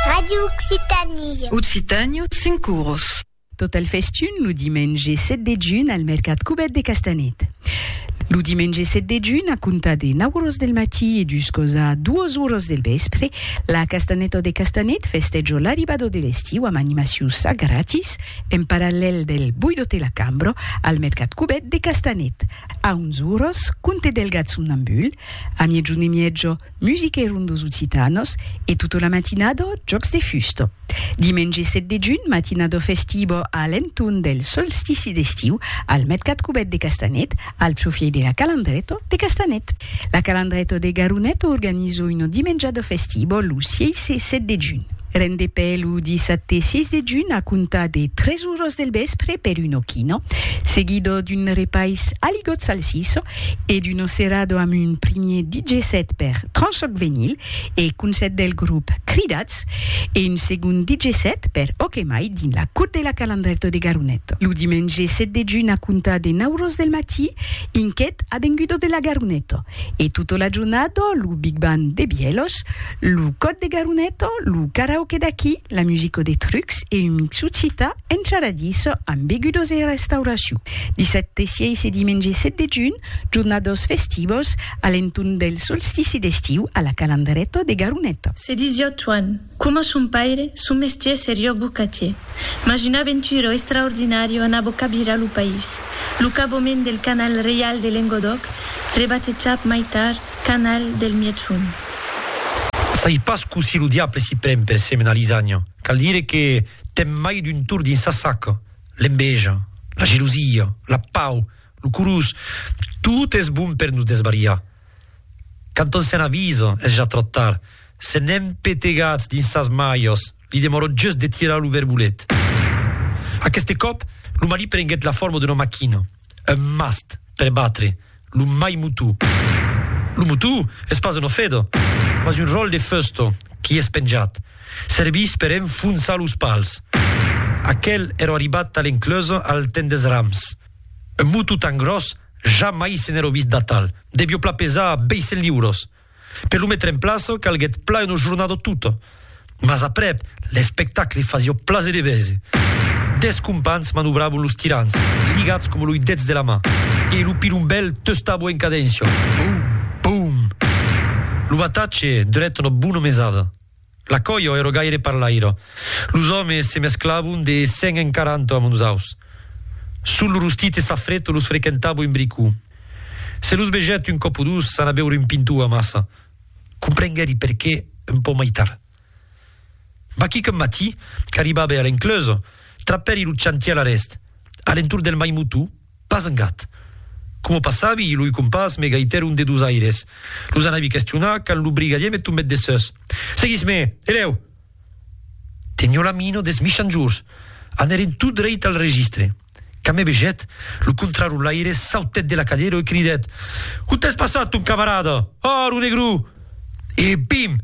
Ràdio Occitània. Occitània, cinc oros. Tot al festun lo dimenge 7 de junh al mercat Cubèt de Castanet. Lo dimenge 7 de junh, a comptar de 9 oros del matí e juscos a 2 oros del vèspre, la Castanèta de Castanet festèjo l'arribada de l'estiu amb animacions a gratis en parallèl del Boido te la cambro al mercat Cubèt de Castanet. A 11 oros, conte delgat somnambul, a miègjun e miègio, Musique Ronde dos Occitanos e tota la matinada jòcs de fusta. Dimenge 7 de junh, matinada festiva a l'entorn del solstici d'estiu al Mercat Cubèt de Castanet, al profièit de la Calandreta de Castanet. La Calandreta de Garoneta organiza una dimenjada festiva lo 6 e 7 de junh. Rendepè lo dissabte 6 de junh a comptar de 3 oras del vèspre per una quina, seguida d'un repais aligot salsissa e d'Uno Cerrado amb un primier DJ set per Tranchoc Venyl e Concèrt del grop Cridats e un segond DJ set per Ok Mai dins la Cour de la Calandrèto de Garonet lo dimenge 7 de junh a comptar de 9 oros del matí inquet Avengudo de la Garoneto e tota la jornada lo Big Band de Bièlhos Lo còd de Garuneto, lo karaoke d'aquí, la musico de trucs e un mixu cita en charadís amb begudos e restauracion. Dissabte 6 e dimenge 7 de junh, jornados festivos a l'entorn del solstici d'estiu a la Calandreto de Garuneto. Se disiá Tuan, coma son paire, son mestier serió bocatier. Mas un aventuro extraordinario anabó cabirar lo país. Lo cabomèn del canal reial de Lengodòc, rebatejap mai tard, Canal del Mièchon. Sai pas cossí lo diable s'i pren per semenar lisanya. Cal dire que ten mai d'un tor dins sa saca, l'enveja, la gelosia, la pau, lo corós, tot es bon per nos desbariar. Quand on se'n avisa, es ja tròp tard, se n'èm petegats dins sas malhas, li demòra just de tirar lo verbolet. Aqueste còp, lo malí prenguèt la forma d'una maquina. Un mast per batre lo mai motu. Lo motu es pas un ofedo, mas un ròl de feusto qui es penjat. Servís per enfonsar los pals. Aquel ero arribat tal encleusa al temps des rams. Un motu tan gròs, jamai se n'ero vist d'atal. Devió pla pesar 200 liuros. Per lo metre en plaça calguèt plan una jornada tota, mas aprèp l'espectacle fasiá plaser de vese. Dètz companhs manobravan los tirants, ligats coma loi dets de la man, e lo pilombèl testava en cadéncia, Boum! Boum! Lo batatge durèt una bona mesada. La coio ero gaire parlaira. Los òmes se mesclavon de cent en quaranta amb nosaus. Sul lo rostit e sa freto los frequentavo un bricou. Se los vegèt un còp o dos anar beure un pintou amassa, comprenguèri perqué un pauc mai tard. Vaquí qu'un matí, qu'arribabe a l'encleusa, trapèri lo chantièr a l'èst, a l'entorn del Mai Moutou, Pas un gat. Coma passavi, loi compàs me gaitèron de dos aires. Los anavi questionar quand lo brigadier me tombèt dessús. Seguís-me! E lèu! Tenió la mina des michanjors. Anèren tot dreit al registre. Quand me vegèt, lo contrarolaire sautèt de la cadera e cridèt, On t'es passat, ton camarada? Ò, lo negró! E pim!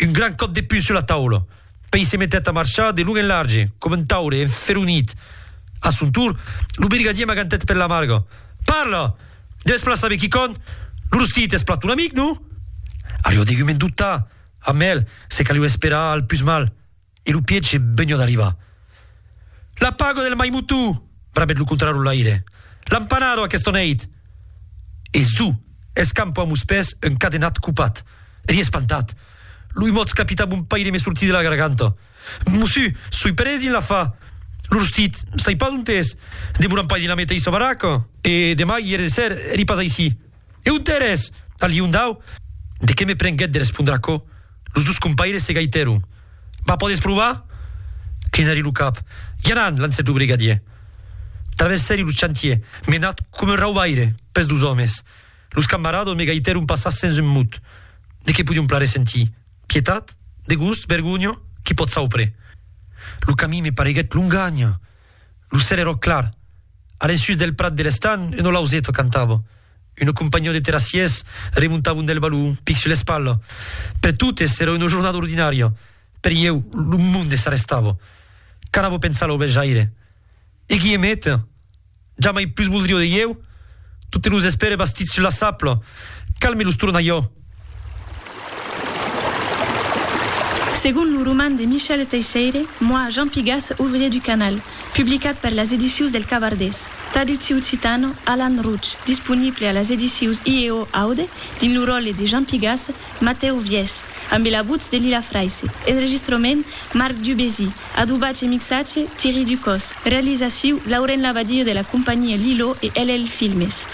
Un gran còp de pus sus la taula. Pei se metèt a marchar de long en large, coma un taure enferonit. A son torn, lo brigadier m'agantèt per la marga. Parla! Deves plan saber quicòm! Lo rostit es plan ton amic, non? Alhors degumen dubtar. Amel, se caliu esperar al pus mal. e lo piège benho d'arribar. La pago del mai motó! brabèt lo contrarolaire. L'an panado aquesta nèit! E zo! escampo amos pès un cadenat copat. Eri espantat. Lo imòts capità bon paire me sortí de la garganta. Mossu, soi perés dins la fa. Lo rostit, sai pas ont es. Demoram pas dins la meteissa baraca? E demà ièr de ser eri pas aicí. E on t'ères? A Liondau? De qué me prenguèt de respondre aquò, los dos compaires se gaitèron. Vas pòder provar? Clinari lo cap. I anant, lancèt lo brigadier. Traversèri lo chantier, menat coma un raubaire pes dos òmes. Los camarados me gaitèron passar sens un mot. De qué podion plare sentir? Pietat? Degust? Vergonha? Qui pòt saupre? Lo camin me pareguèt longanh. Lo cèl èrò clar. A l'ensús del prat de l'estan, un olauzeto cantava. Una companhion de terrassiers remontavan del balon, pic sus l'espalha. Per totes èra una jornada ordinària, per ieu lo monde s'arrestava. Qu'anava pensar lo Belhjaire? E Guihemet? Jamai pus voldrió de ieu? Totes los espèri bastits sus la sapla, calme los tornaió. Segon lo roman de Michel Teisseire, Moi, Jean Pigas, ouvrier du canal, publicat per las edicius del Cavardés, traducciu occitan, Alan Rouch, disponible a las edicius IEO Aude, dins lo ròtle de Jean Pigas, Matèu Vièch, ambe la votz de Lila Fraisse, enregistrament, Marc Dubésy, adobatge e mixatge, Thierry Ducos, realizaciu, Lauren Labadie de la companhia Lilo e LL Filmes.